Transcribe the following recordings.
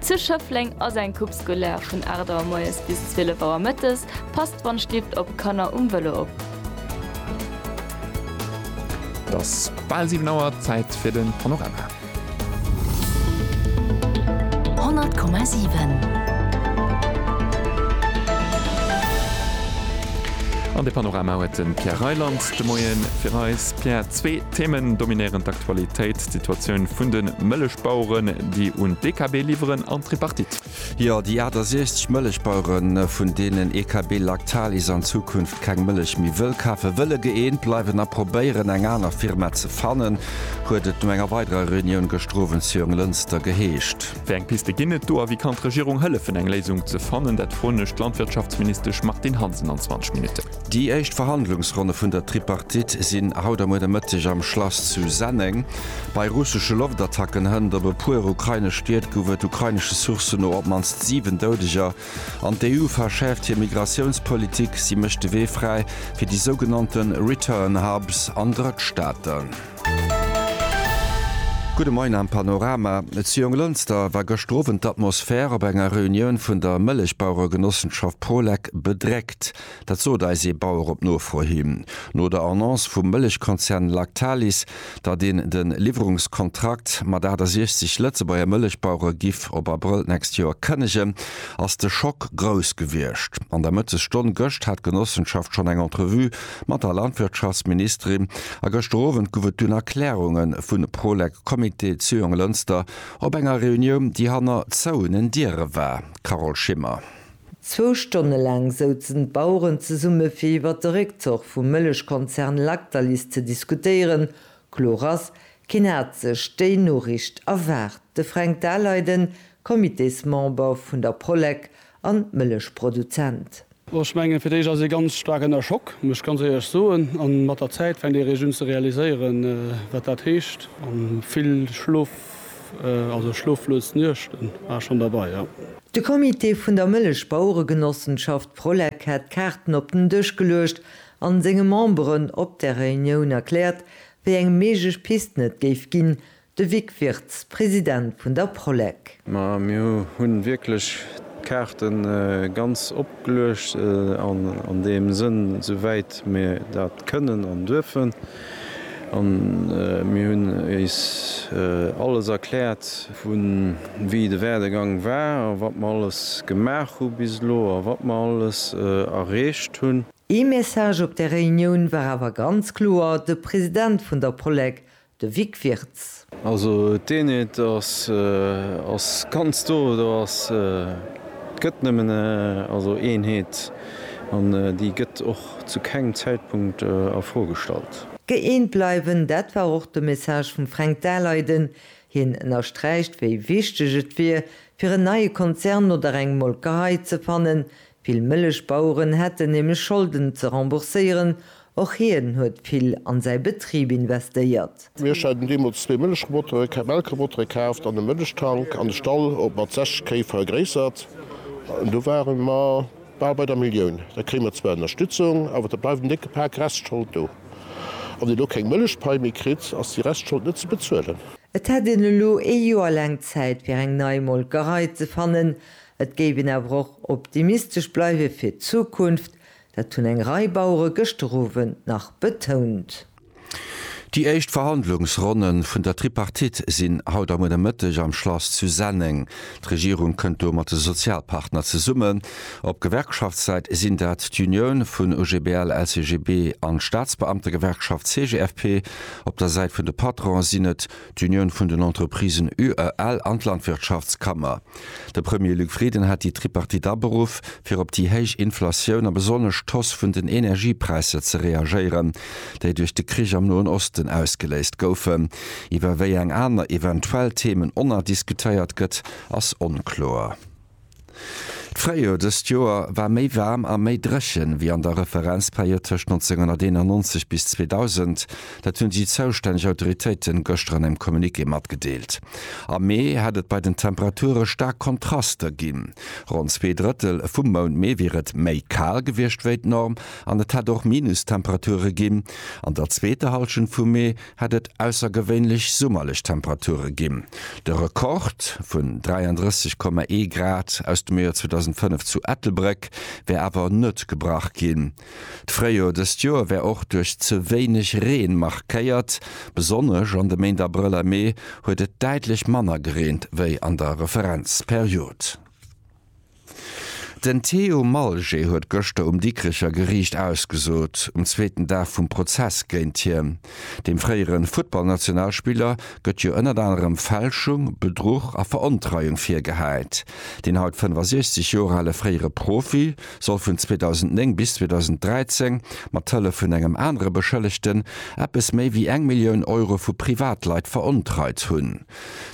Zu Schëffleng ass eng Coupe scolaire vun 8 Auer moies bis 12 Auer mëttes. Passt wann Stift op, Kanner um Vëlo op. Et ass bal 7 Auer, Zäit fir den Panorama. 100,7. An de Panorama huet de Pierre Reyland de Moien fir eis. Pierre, zwee Themen dominéieren d'Aktualitéit. D'Situatioun vun de Mëllechbaueren, déi un d'EKB liwweren an d'Tripartite. Jo, déi 68 Mëllechbaueren, vun deenen EKB Lactalis an Zukunft keng Mëllech méi wëll kafen, wëlle gëeent bleiwen a probéieren, eng aner Firma ze fannen, huet et no enger weiderer Reunioun gëschter Owend zu Jonglënster geheescht. Wéi eng Piste ginn et do a wéi kann d'Regierung hëllefen, eng Léisung ze fannen? Dat froen ech d'Landwirtschaftsministesch Martine Hansen an 20 Minutten. Déi éischt Verhandlungsronne vun der Tripartite sinn haut a muer de Mëtteg am Schlass zu Senneng. Bei russesche Loftattacken hënt op e puer ukrainesch Stied gouf et ukrainesche Sourcen no op d'mannst 7 Doudeger. An d'EU verschäerft hir Migratiounspolitik, si mécht de Wee fräi fir déi sougenannte Return Hubs an Drëttstaaten. Gudde Moien am Panorama. Zu Jonglënster war gëschter Owend d'Atmosphär op enger Reunioun vun der Mëllechbaueregenossenschaft Prolec bedréckt. Dat sot eis ee Bauer op Nofro hin. No der Annonce vum Mëllechkonzern Lactalis, datt een de Liwwerungskontrakt mat 68 Lëtzebuerger Mëllechbauere giff op Abrëll d'nächst Joer kënnegen, ass de Schock grouss gewiescht. An der Mëttesstonn gëscht hat d'Genossenschaft schonn eng Entrevue mat der Landwirtschaftsministerin a gëschter Owend gouf et dunn Erklärunge vu Prolec, Comité Zuyong-Lënster, op enger Reunioun, déi hanner zouenen Diere war. Carole Schimmer. Zwou Stonne laang souzen d'Baueren zesumme fir iwwert de Réckzuch vum Mëllechkonzern Lactalis ze diskutéieren. Kloer ass, keen hat sech déi Noriicht erwaart. De Fränk Daleiden, Comitésmember vun der Prolec an Mëllechproduzent. Ech mengen, fir d'éischt ass ee ganz staark ënner Schock, muss ech ganz éierlech soen. An mat der Zäit fänkt ee eréischt un ze realiséieren, wat dat heescht. An vill Schlof, also schloflos Nuechten war schonn derbei, jo. De Comité vun der Mëllechbaueregenossenschaft Prolec hat d'Kaarten op den Dësch geluecht an senge Memberen op der Reunioun erkläert, wéi eng méiglech Pisten et géif ginn, de Vic Wirtz, President vun der Prolec. Ma mir hunn wierklech d'Kaarte ganz opgeluecht, an deem Sënn, esou wäit mir dat kënnen an duerfen. A mir hunn iis alles erkläert, vu wéi de Werdegang war a wat mer alles gemaach hu bis elo a wat mer alles erreecht hunn. Ee Message op där Reunioun war awer ganz kloer, de President vun der Polec, de Vic Wirtz. Also d'Eenheet ass ganz do, do ass, et gëtt nëmmen also Eenheet an déi gëtt och zu kengem Zäitpunkt a Fro gestallt. Gëeent bleiwen, dat war och de Message vum Fränk Daleiden. Hien ënnersträicht, wéi wichteg et wier, fir en neie Konzern oder eng Molkerei ze fannen, Vill Mëllechbaueren hätten nämlech Scholden ze rembourséieren, och hien huet vill an säi Betrib investéiert. Mir haten deemools zwee Mëllechrobotere, keng Melkrobotere kaaft an e Mëllechtank an de Stall op mat 60 Kéi vergréissert. An do ware mer bal bei der Millioun. Da kréie mer zwar Ënnerstützung, awer da bleift en décke Pak Restschold do. A wann Dir elo keng Mëllechpai méi kritt, ass déi Restschold net ze bezuelen. Et hätt een elo ee Joer laang Zäit, fir eng nei Molkerei ze fannen. Et géif een awer och optimistesch bleiwe fir d'Zukunft, dat hunn eng Rei Bauere gëschter Owend nach betount. Déi éischt Verhandlungsronne vun der Tripartite sinn haut am Nomëtteg am Schlass zu Senneng. D'Regierung kënnt do mat de Sozialpartner zesummen. Op Gewerkschaftssäit sinn dat d'Unioun vun OGBL, LCGB an d'Staatsbeamtegewerkschaft CGFP. Op der Säit vun de Patronen sinn et d'Unioun vun den Entreprisen, UEL, an d'Landwirtschaftskammer. De Premier Luc Frieden hat déi Tripartite aberuff, fir op déi héich Inflatioun a besonnesch d'Hausse vun den Energiepräisser ze reagéieren, déi duerch de Krich am Noen Osten ausgeléist goufen. Iwwer wéi eng aner eventuell Themen onnerdiskutéiert gëtt, ass onkloer. D'Fréijoer dëst Joer war méi waarm a méi dréchen, wéi an der Referenzperiod tëscht 1991 bis 2000. Dat hunn déi zoustänneg Autoritéiten gëschter an engem Communiqué matgedeelt. Am Mee hätt et bei den Temperature staark Kontraster ginn. Ronn zwee Drëttel vum Mount Mee wier et méi kal gewiescht wéi d'Norm an et hätt och Minustemperature ginn. An der zweeter Hallschent vum Mee hat et aussergewéinlech summerlech Temperature ginn. De Rekord vun 33,1 Grad aus dem Joer 2005 zu Ettelbréck wär awer net gebrach ginn. D'Fréijor dëst Joer wär och duerch ze wéineg Reen markéiert. Besonnesch an de Méint Abrëll a Mee huet et däitlech manner gereent wéi an der Referenzperiod. Den Theo Malger huet gëschter um Dikricher Geriicht ausgesot, um zweeten Dag vum Prozess géint hien. Dem fréiere Futtballnationalspiller gëtt jo ënnert anerem Fälschung, Bedruch a Verontreiung virgehäit. Deen haut 65 Joer ale fréiere Profi soll vun 2009 bis 2013 mat Hëllef vun engem anere Beschëllegten eppes méi wéi eng Millioun Euro vu Privatleit verontreit hunn.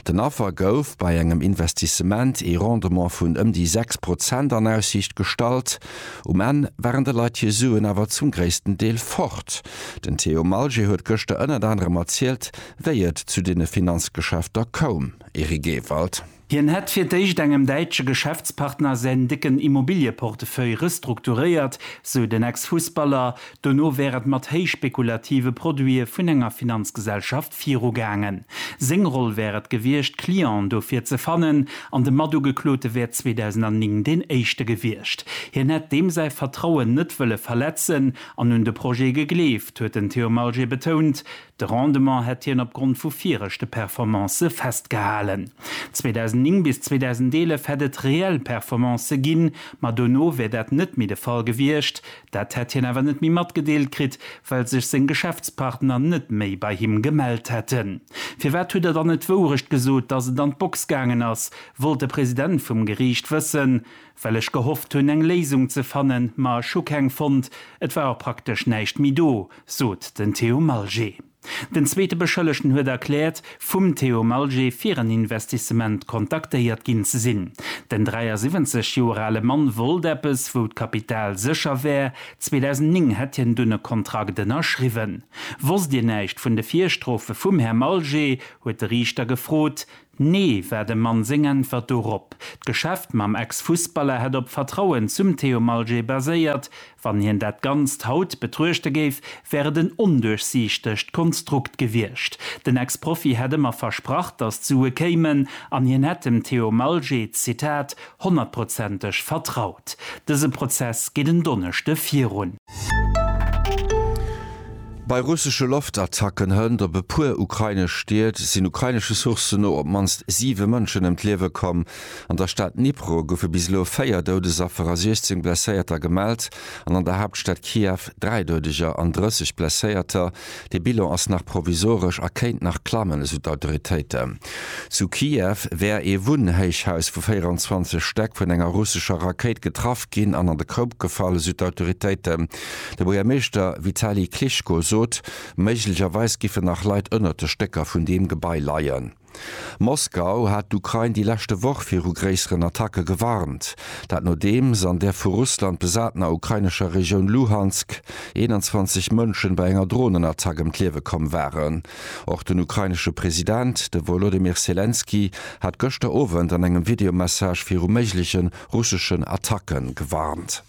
Den Affer gouf bei engem Investissement ee Rendement vun ëm déi 6 Prozent an Aussiicht gestallt. Um Enn waren de Leit hir Suen awer zum gréissten Deel fort. Den Theo Malger huet gëschter ënnert anerem erzielt, wéi et zu deene Finanzgeschäfter koum. Eric Ewald. Hien hätt fir d'éischt engem däitsche Geschäftspartner säin décken Immobilieportefeuille restrukturéiert, sou den Ex-Fussballer. Dono wär et mat héich spekulative Produite vun enger Finanzgesellschaft virugaangen. Seng Roll wär et gewiescht, Clienten dofir ze fannen, an de Matugeklote wär 2009 deen éischte gewiescht. Hien hätt deem säi Vertrauen net wëlle verletzen an un de Projet gegleeft, huet den Theo Malger betount. De Rendement hätt hien opgrond vu viregte Performancë festgehalen. 2009 bis 2011 hätt et reell Performancë ginn, ma dono wär dat net méi de Fall gewiescht. Dat hätt hien awer net méi matgedeelt kritt, well sech seng Geschäftspartner net méi bei him gemellt hätten. Firwat hutt Der dann net d'Wourecht gesot, datt et an d'Box gaangen ass? wollt de President vum Geriicht wëssen. Well ech gehofft hunn, eng Léisung ze fannen, ma ech hu keng fonnt. Et war och praktesch näischt méi do, sot den Theo Malger. Den zweete Beschëllegten huet erkläert, vum Theo Malger fir en Investissement kontaktéiert ginn ze sinn. Den 73 Joer ale Mann wollt eppes, wou d'Kapital sécher wär. 2009 hätt hien dunn e Kontrakt ënnerschriwwen. Wosst Dir näischt vun de Virstrofe vum Här Malger? huet de Riichter gefrot. Nee, war dem Mann seng Äntwert dorop. D'Geschäft mam Ex-Fussballer hätt op Vertrauen zum Theo Malger baséiert. Wann hien dat Ganzt haut betruechte géif, wär et en onduerchsiichtegt Konstrukt gewiescht. Den Ex-Profi hätt ëmmer versprach, datt d'Sue kéimen an hien hätt dem Theo Malger, Zitat, honnertprozenteg vertraut. Dëse Prozess geet en Donneschde virun. Bei russesche Loftattacken hënt op e puer ukrainesch Stied sinn ukrainesche Sourcen no op d'mannst siwe Mënschen ëm d'Liewe komm. An der Stad Dnipro goufe bis elo véier Doudesaffer a 16 Blesséierter gemellt an an der Haaptstad Kiew dräi Doudeger an 30 Blesséierter. De Bilan ass nach provisoresch a kéint nach klammen, esou d'Autoritéiten. Zu Kiew wär ee Wunnhéichhaus vu 24 Stäck vun enger russescher Rakéit getraff ginn an an de Koup gefall, esou d'Autoritéiten. De Buergermeeschter Vitali Klitschko sot, méiglecherweis géifen nach Leit ënnert de Stécker vun deem Gebai leien. Moskau hat d'Ukrain déi leschte Woch viru gréisseren Attacke gewarnt. Dat nodeems an der vu Russland besatener ukrainescher Regioun Luhansk 21 Mënschen bei enger Dronenattack ëm d'Liewe komm waren. Och den ukrainesche President, de Wolodymyr Selenskyj, hat gëschter Owend an engem Videomessage viru méiglechen russeschen Attacke gewarnt.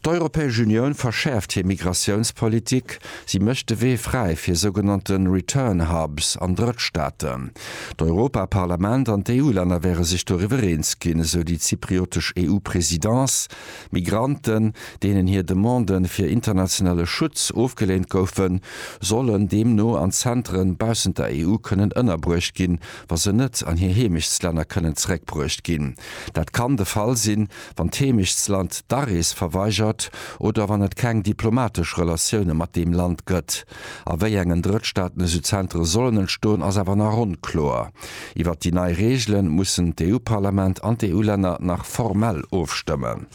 D'Europäesch Unioun verschäerft hir Migratiounspolitik, si mécht de Wee fräi fir sougenannte Return Hubs an Drëttstaaten. D'Europaparlament an d'EU-Länner wäre sech doriwwer eens ginn, esou déi zypriotesch EU-Presidence. Migranten, deenen hir Demande fir internationale Schutz ofgeleent goufen, sollen deemno an Zentere baussent der EU kënnen ënnerbruecht ginn, wa se net an hir Heemechtslänner kënnen zeréckbruecht ginn. Dat kann de Fall sinn, wann d'Heemechtsland d'Arees verweigert oder wann et keng diplomatesch Relatioune mat deem Land gëtt. A wéi engen Drëttstaatenasylzentere sollen entstoen, ass awer nach onkloer. Iwwert déi nei Reegele mussen d'EU-Parlament an d'EU-Länner nach formell ofstëmmen.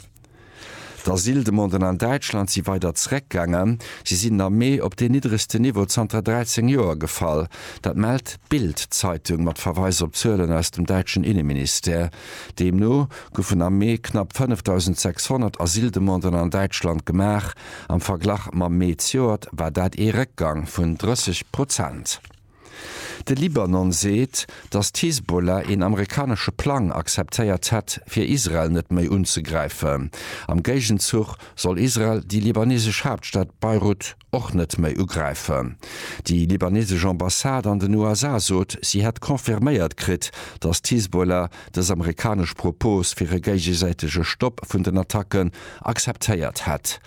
D'Asyldemanden an Däitschland si weider zeréckgaangen. Si sinn am Mee op deen niddregsten Niveau zanter 13 Joer gefall. Dat mellt d'Bild-Zeitung mat Verweis op Zuelen aus dem däitschen Inneministère. Deemno goufen am Mee knapp 5.600 Asyldemanden an Däitschland gemaach. Am Verglach mam Mee d'Joert war dat ee Réckgang vun 30 Prozent. De Libanon seet, datt d'Hisbollah een amerikanesche Plang akzeptéiert hätt, fir Israel net méi unzegräifen. Am Géigenzuch soll Israel déi libanesesch Haaptstad Beirut och net méi ugräifen. Déi libanesesch Ambassade an den USA sot, si hätt confirméiert kritt, datt d'Hisbollah dës amerikanesch Propos fir e géigesäitege Stopp vun den Attacken akzeptéiert hätt.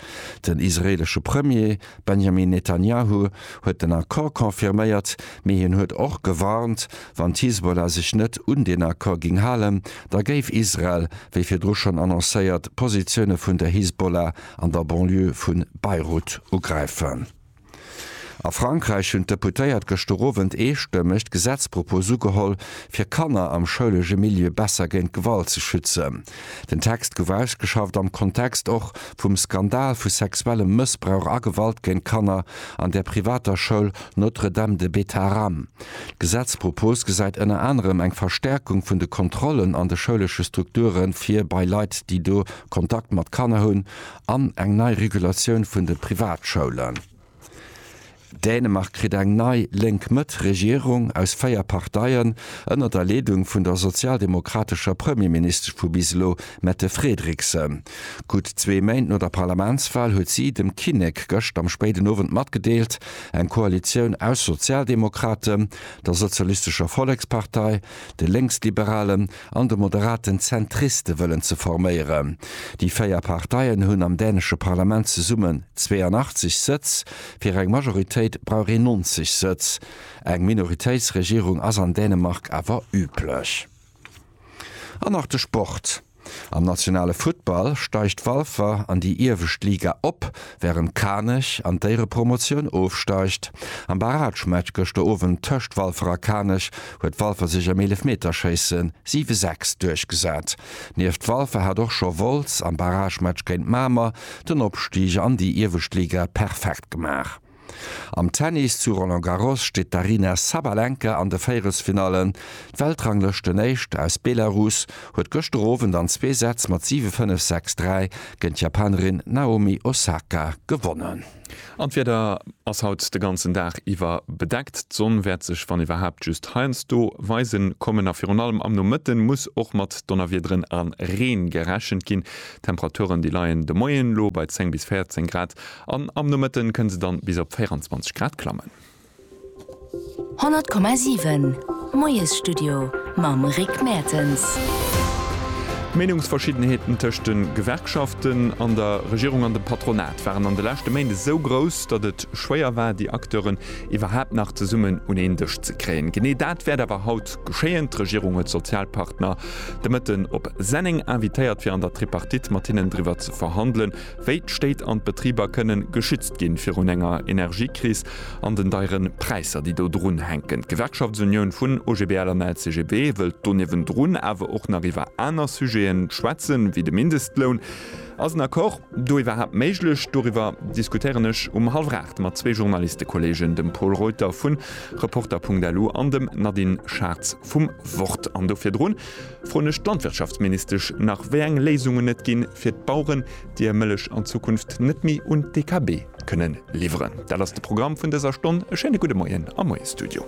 Den israeelesche Premier Benjamin Netanjahu huet den Accord confirméiert, mee hien huet och gewarnt, wann d'Hisbollah sech net un deen Accord géing halen, da géif Israel, wéi virdru schonn annoncéiert, d'Positioune vun der Hisbollah an der Banlieue vu Beirut ugräifen. A Frankräich hunn d'Deputéiert gëschter Owend eestëmmeg d'Gesetzpropos ugeholl, fir Kanner am schoulege Milieu besser géint Gewalt ze schützen. Den Text gouf ausgeschafft am Kontext och vum Skandal vu sexuellem Mëssbrauch a Gewalt géint Kanner an der privater Schoul Notre Dame de Betharam. D'Gesetzpropos gesäit ënner anerem eng Verstärkung vun de Kontrollen an de schoulesche Strukture fir bei Leit, déi do Kontakt mat Kanner hunn an eng nei Regulatioun vun de Privatschoulen. Dänemark kritt eng nei Lénk-Mëtt-Regierung aus véier Parteien ënner der Leedung vun der sozialdemokratescher Premierministesch vu bis elo, Mette Frederiksen. Gutt zwee Méint no der Parlamentswal huet si dem Kinnek gëscht am spéiden Owend matgedeelt, eng Koalitioun aus Sozialdemokraten, der Sozialistescher Vollekspartei, de Lénksliberalen, an de moderaten Zentriste wëllen ze forméieren. Déi véier Parteien hunn am dänesche Parlament zesummen 82 Sëtz, fir eng Majoritéit brauch een 90 Sëtz. Eng Minoritéitsregierung ass an Dänemark awer üblech. An nach de Sport, Am nationale Futtball steigt Walfer an déi iewescht Liga op. Wärend Kanech an d'Éierepromotioun ofsteigt. Am Barragematch gëschter Owend tëscht Walfer a Kanech huet Walfer sech am Eelefmeterschéisse 7, 6 duerchgesat. Nieft Walfer hat och scho Wolz am Barragematch géint Mamer den Opstieg an déi iewescht Liga perfekt gemaach. Am Tennis zu Roland Garros steet d'Aryna Sabalenka an de Véierelsfinallen. D'Weltranglëschten-Éischt aus Belarus huet gëschter Owend an zwee Sätz mat 7, 5, 6, 3 géint d'Japanerin Naomi Osaka gewonnen. An d'Wieder ass haut de ganzen Dag iwwer bedeckt. D'Sonn wäert sech wann iwwerhaapt just heiansdo weisen kommen a virun allem am Nomëtte muss och mat Donnerwiederen a Reen gerechent ginn. D'Temperaturen déi leien de Moien elo bei 10 bis 14 Grad an am Nomëtte kënne se dann bis op 24 Grad klammen. 100,7 Moiesstudio mam Rick Mertens. D'Meenungsverschiddenheeten tëscht de Gewerkschaften an der Regierung an dem Patronat waren an de leschte Méint esou grouss, datt et schwéier war, déi Acteuren iwwerhaapt nach zesummen un een Dësch ze kréien. Genee dat wäert awer haut geschéien. D'Regierung huet d'Sozialpartner de Mëtten op Senneng invitéiert, fir an der Tripartite mat hinnen driwwer ze verhandelen, Wéi d'Stéit an d'Betriber kënnen geschützt ginn virun enger Energiekris an den deieren Präisser, déi do drun hänken. D'Gewerkschaftsunioun vun OGBL an LCGB wëllt do niewendrun awer och nach iwwer aner Sujeten schwätzen, wéi de Mindestloun. Ass en Accord do iwwerhaapt méiglech? Doriwwer diskutéieren ech um hallwer 8 mat zwee Journalistekolleegen, dem Pol Reuter vu Reporter.lu an dem Nadine Schartz vum Wort. An do virdrun froen ech d'Landwirtschaftsministesch nach, wéi eng Léisungen et ginn fir d'Baueren, déi hir Mëllech an Zukunft net méi un d'DKB kënnen liwweren. Dat ass de Programm vun dëser Stonn. E schéine gudde Moien am Moie Studio.